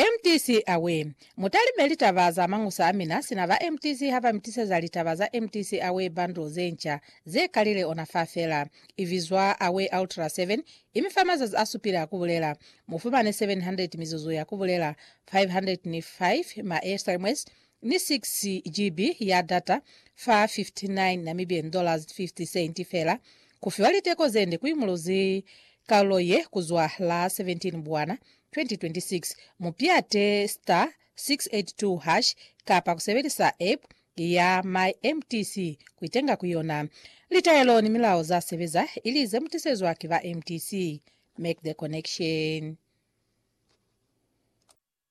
MTC Away! Mutalime litaba za mañusa a mina sina ba MTC ha ba mi tiseza litaba za MTC Away bundle ze nca ze kalile ona fa fela. I bizwa Away Ultra 7, i mi fa mazazi a supile a ku bulela. Mu fumane 700 mizuzu ya ku bulela, 505 maestremwes, ni 6 GB ya data fa N59 dollars fela, ku fiwa liteko ze nde ku imuluzi kalulo ye ku zwa la 17 Mbwana 2026. Mu piate star 682 hash kapa ku sebelisa app ya MyMTC ku itenga ku yona. Litaelo ni milao za sebeza ili ze mu tisezwa ki ba MTC. Make the connection.